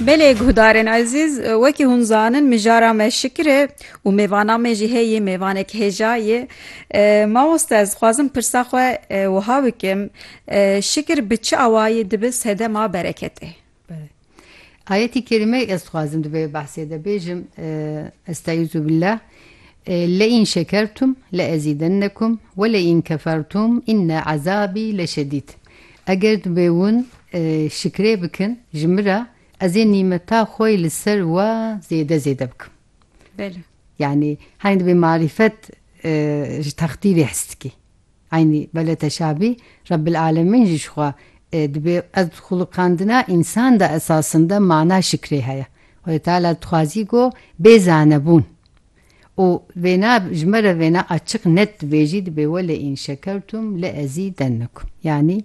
Belê guhdarên ezîz, wekî hûn zanin mijara me şikir e û mêvana me jî heye mêvanek hêja ye. Mamoste ez dixwazim pirsa xwe wiha bikim, şikir bi çi awayî dibe sedema bereketê? Ayetî kerîmeyê ez dixwazim di vê behsê de bêjim, Estaizu billah, Leîn şekertum leezîdennekum weleîn kefertum inne ezabî leşedîd. Eger divê wan şikrê bikin ji min re, ez ê nîmeta xwe yê li ser we zêde zêde bikim. Belê. Yanî henî divê marîfet ji textî vê his dikî. Eynî belê teşabî Rebbil Alemîn jî ji xwe dibê ez xulqandina însan de esasinde mana şikrê heye. Xwedê Teala dixwazî ku bê zanebûn. û vêna ji me re vêna açiq net dibêjî dibê wele in şekertum le ezî dennikum yanî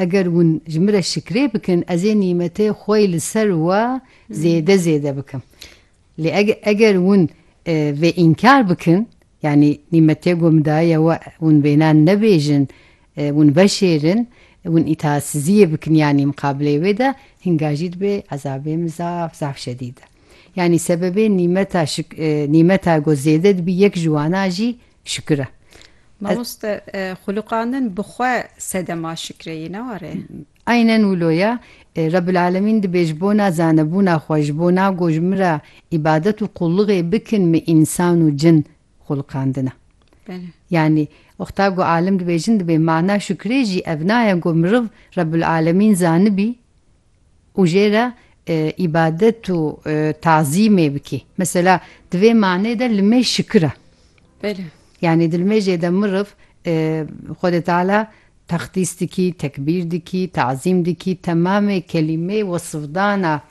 eger win ji min re şikrê bikin ez ê nîmetê xwe li ser we zêde zêde bikim lê eger win vê înkar bikin yanî nîmetê ku min daye we win vêna nebêjin win veşêrin win îtaatsiziyê bikin yanî miqabileyê wê de hinga jî dibê ezabê min zaf zaf şedîd e. Yanî sebebê nîmeta nîmeta ku zêde dibî yek ji wana jî şikir e. Mamoste xulûqandin bi xwe sedema şikirê yê ne were? Aynen wilo ye. Rebbilelemîn dibê ji bona zanebûna xwe, ji bona ku ji min re îbadet û qulluxê bikin min însan û cin xulqandine. Yanî wexta ku alim dibêjin dibê mana şikirê jî ev naye ku miriv Rebbilelemîn zanibî, û jê re îbadet û tazîmê bikî. Mesela di vê manê de limê şikir e. Belê. Yanî di limêjê de miriv Xwedê Teala texdîs dikî, tekbîr dikî, tazîm dikî, temamê kelîmeyê wesifdana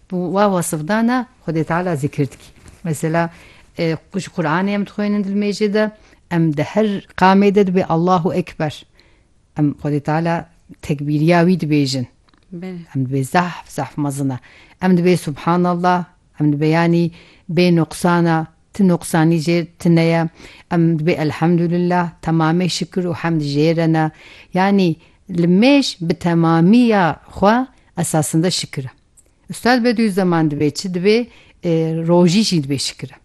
wa wesifdana Xwedê Teala zikir dikî. Mesela ji Quranê em dixwînin di limêjê de, em di her qamê de dibê Allahu Ekber. Em Xwedê Teala tekbîriya wî dibêjin. Em dibê zahf zahf mezin e. Em dibê Subhanallah, em dibê yanî bê nuqsan e, ti nuqsanî jê tune ye. Em dibê Elhamdulillah, temamê şikir û hemd jê re ne. Yanî li mêj bi temamî ya xwe esasinde şikir e. Ustad Bedûîzzeman dibê çi dibê? Rojî jî dibê şikir e.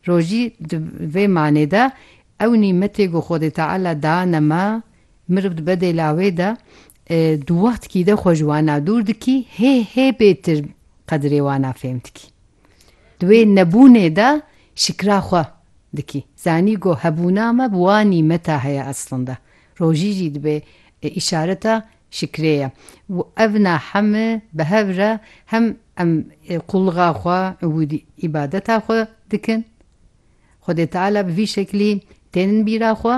Rojî di vê manê de ew nîmetê ku Xwedê Teala dane me, meriv dibe dêla wê de, di wextkî de xwe ji wana dûr dikî, hê hê bêtir qedirê wana fêm dikî. Di wê nebûnê de şikra xwe dikî. Zanî ku hebûna me bi wan nîmeta heye eslinde. Rojî jî dibe îşareta Şikrê ye. Û ev na heme bi hev re hem em qulluxa xwe û îbadeta xwe dikin. Xwedê Teala bi vî şeklî tênin bîra xwe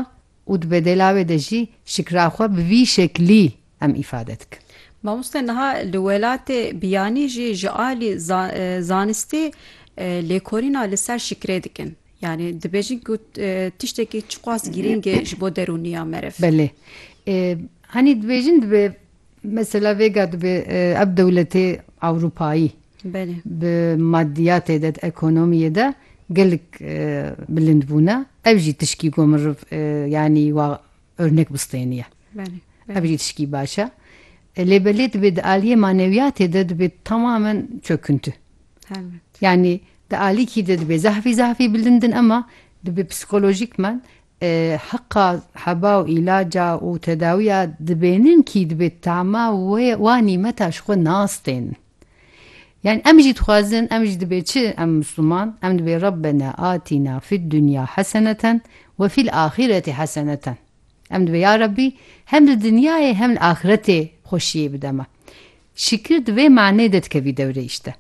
û di bedêla wê de jî şikra xwe bi vî şeklî em îfade dikin. Mamoste niha li welatê biyanî jî ji alî zanistî lêkolîna li ser şikrê dikin. Yanî dibêjin ku tiştekî çiqas girîng e ji bo derûniya meriv. Belê. Hanî dibêjin dibe mesela vêga dibe ev dewletê ewropayî bi madiyatê de di ekonomiyê de gelek bilind bûne. Ev jî tişkî ku meriv yanî Örnek bistêniye. Belê. Ev jî tişkî baş e. Lê belê dibê di aliyê manewiyatê de dibê temamen çöküntü. Helbet. Yanî di alîkî de dibê zahfî zahfî bilindin ema dibê psikolojîkmen e, heqa heba û îlaca û tedawiya dibênin kî dibê tama wê wa nîmeta ji xwe nastênin. Yani em jî dixwazin, em jî dibê çi em Misliman, em dibê Rabbena atîna fid dunya heseneten we fil axîreti heseneten. Em dibê ya Rabbî hem li dinyayê hem li axiretê xweşiyê bide me. Şikir di vê maneyê de dikevî dewreyê işte.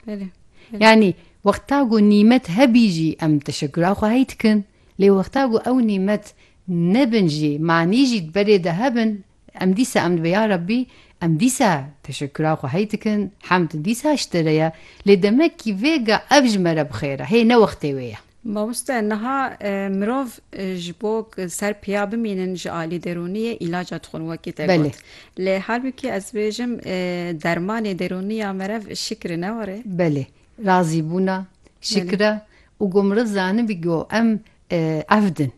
Yani wexta ku nîmet hebî jî em teşekura xwe hey dikin lê wexta ku ew nîmet nebin jî manî jî berê de hebin Em dîsa em dibê ya Rabbî, em dîsa teşekkura xwe hey dikin, hemd dîsa ji te re ye, lê demekî vêga ev ji me re bi xêr e, hê ne wextê wê ye. Mamoste niha mirov ji bo ku ser piya bimînin ji alî derûnî yê îlaca dixwin wekî te got. Lê halbikî ez dibêjim dermanê derûnî ya merev şikr e ne were? Belê razîbûna, şikr e û ku mirov zanibî ku em evd in.